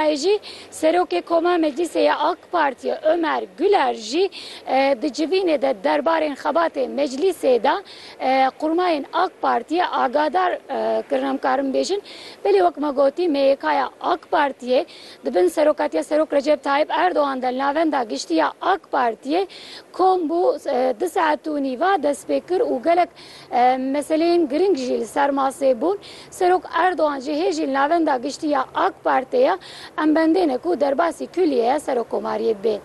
Heye jî Serokê Koma Meclîsê ya AK Partiyê Omer Guler jî di civînê de derbarên xebatê meclîsê de qurmayên AK Partiyê agadar kirin. Em karin bêjin belê wek me gotî MYKya AK Partiyê di bin serokatiya Serok Recep Tayyip Erdogan de li navenda giştî ya AK Partiyê kom bû du saet û nîva destpê kir û gelek Meseleyên girîng jî li ser masê bûn. Serok Erdogan jî hê jî li Navenda Giştî ya AK Partê em bendê ne ku derbasî kulîyeya serokkomariyê bê.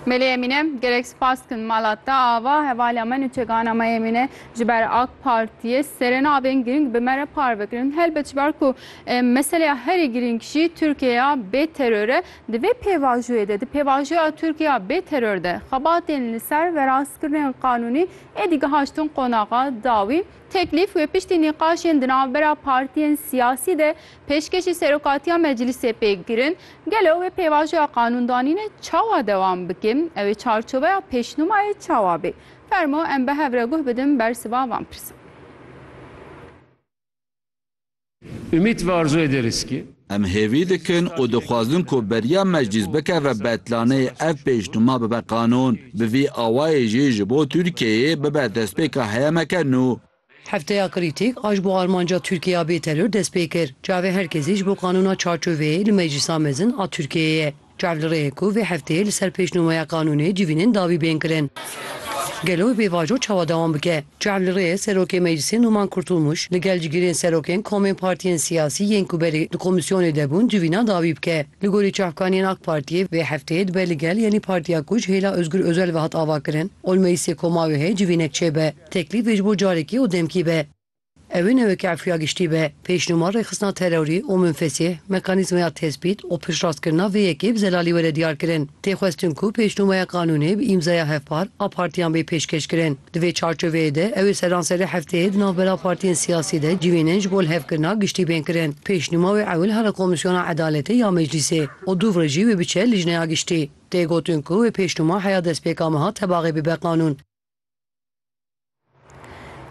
Melih Emine, Gelek spas dikim mala te ava hevaliya me nûçegana me yê mîne ji ber AK Partiyê serê navên girîng bi me re parve kirin. Helbet ji ber ku meseleya herî girîng jî Tirkiyeya bê teror e, di vê pêvajoyê de, di pêvajoya Tirkiyeya bê teror de xebatên li ser verastkirinên qanûnî, Êdî gihaştin qonaxa dawî, teklîf wê piştî nîqaşên di navbera partiyên siyasî de pêşkêşî Serokatiya Meclîsê pê girin. Gelo wê pêvajoya qanûndanînê çawa dewam bike? Ew ê çarçoveya pêşnûmayê çawa bê? Fermo em bi hev re guh bidin bersiva van pirsan. Ümit ve arzu ederiz ki. Em hêvî dikin û dixwazin ku beriya Meclîs bikeve betlaneyê ev pêşnûma bibe qanûn. Bi vî awayê jî ji bo Tirkiyeyê bibe destpêka heyemeke nû. Hefteya Krîtîk a ji bo armanca Tirkiye ya bêteror dest pê kir. Çavê her kesî ji bo qanûna çarçoveyê li Meclîsa Mezin a Tirkiyeyê ye. Çar li rê ye ku vê hefteyê li ser pêşnûmeya qanûnê civînên dawî bên kirin. Gelo wê pêvajo çawa dewam bike? Çar li rê ye Serokê Meclisê Nûman Kurtulmuş li gel cigirên serokên komên partiyên siyasî yên ku berê di komîsyonê de bûn civîna dawî bike. Li gorî çavkaniyên AK Partiyê vê hefteyê dibe li gel yenî partiya ku ji hêla Ozgur Ozel ve hat avakirin ol meclisê koma wê heye civînek çêbe. Teklîf vê ji bo carekî û demkî be. Ew ê neweke Efrîya Giştî be, pêşnûma rêxistina terorî û minfesî, mekanîzmaya tespît û piştrastkirina vê yekê bi zelalî were diyarkirin. Tê xwestin ku pêşnûmaya qanûnê bi îmzaya hevpar a partiyan bê pêşkêşkirin. Di vê çarçoveyê de ew ê seranserê hefteyê di navbera partiyên siyasî de civînên ji bo lihevkirina giştî bên kirin. Pêşnûma wê ewil here Komîsyona Edaletê ya Meclîsê û dû re jî wê biçe Lijneya Giştî. Tê gotin ku wê pêşnûma heya destpêka meha tebaxê bibe qanûn.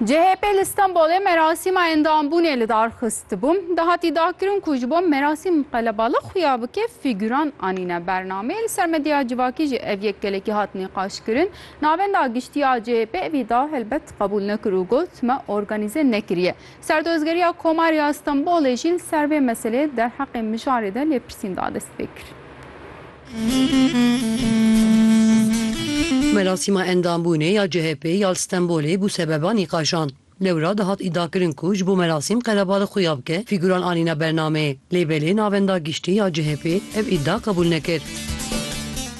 CHP li Stenbolê merasîma endambûnê li dar xistibû. Dahatî dakirin ku ji bo merasîm qelebalix xuya bike fîgûran anîne bernameyê. Li ser medya civakî jî ev yek gelekî hat nîqaşkirin. Navenda giştî ya CHP ev îdia helbet qebûl nekir û got, me organîze nekiriye. Serdozgeriya Komarê ya Stenbolê jî li ser vê meseleyê derheqê mijarê de lêpirsîn da destpêkirin. Merasîma endambûnê ya CHP'ê ya li Stenbolê bû sebeba nîqaşan. Lewra dihat îdiakirin ku ji bo merasîm qerebalê xwe ya bike fîgûran anîne bernameyê. Lê belê navenda giştî ya CHP'ê ev îdia qebûl nekir.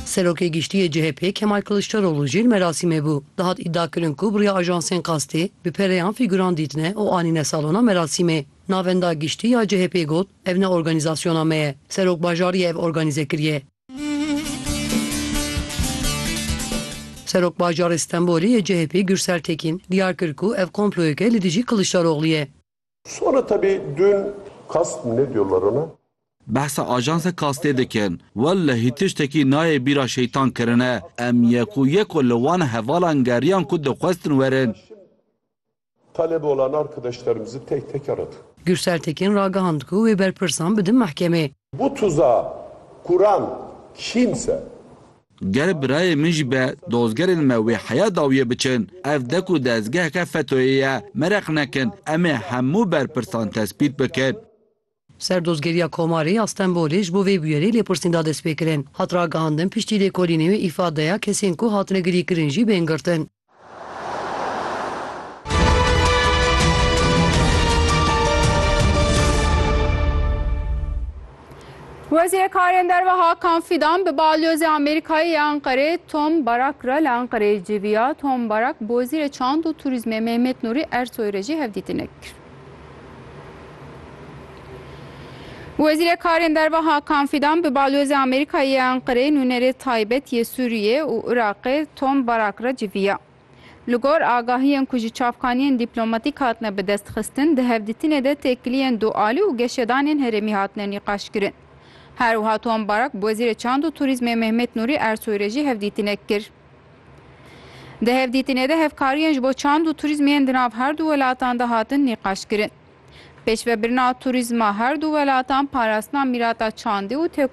Serokê Giştî yê CHP'ê Kemal Kiliçdaroglu jî li merasîmê bû. Dihat îdiakirin ku bi riya ajansên qastê bi pereyan fîgûran dîtine û anîne salona merasîmê. Navenda giştî ya CHP'ê got, Ev ne organîzasyona me ye. Serokbajarî ye ev organîze kiriye. Serokbajarê Stenbolê yê CHP'ê Gursel Tekîn, diyar kir ku ev komployeke li dijî Kiliçdaroglu ye. Sonra tabii dün kas ne diyorlar ona? Behsa ajansa kastê dikin. Wellehî tiştekî nayê bîra şeytan kirine. Em yek û yek li wan hevalan geriyan ku dixwestin werin. Talebe olan arkadaşlarımızı tek tek aradık. Gürsel Tekin ragihand ku wê berpirsan bidin mehkemê. Bu tuzağı kuran kimse? Ger birayê min jî be dozgerên me wê heya dawiyê biçin. Ev dek û dezgeheke FETÖ'yê ye. Mereq nekin, em ê hemû berpirsan tespît bikin. Serdozgeriya Komarê ya Stenbolê ji bo vê bûyerê lêpirsîn da destpêkirin. Hat ragihandin piştî lêkolînê wê îfadeya kesên ku hatine girîkirin jî bên girtin. Wezîrê Karên Derve Hakan Fîdan bi Balyozê Amerîkayê ya Enqerê Tom Barak re li Enqereyê civiya. Tom Barak bi Wezîrê Çand û Turîzmê Mehmet Nurî Ersoy re jî hevdîtinê kir. Wezîrê Karên Derve Hakan Fîdan bi Balozê Amerîkayê yê Enqereyê nûnerê taybet yê Sûriyê û Iraqê Tom Barak re civiya. Li gor agahiyên ku ji çavkaniyên dîplomatîk hatine bidestxistin, di hevdîtinê de têkiliyên dualî û geşedanên herêmî hatine nîqaşkirin. Her wiha Tom Barak bi Wezîrê Çand û Turîzmê Mehmet Nûrî Ersoy re jî hevdîtinek kir. Di hevdîtinê de hevkariyên ji bo çand û turîzm yên di nav her du welatan de hatin nîqaşkirin. Pêşvebirina turîzma her du welatan, parastina mîrata çandî û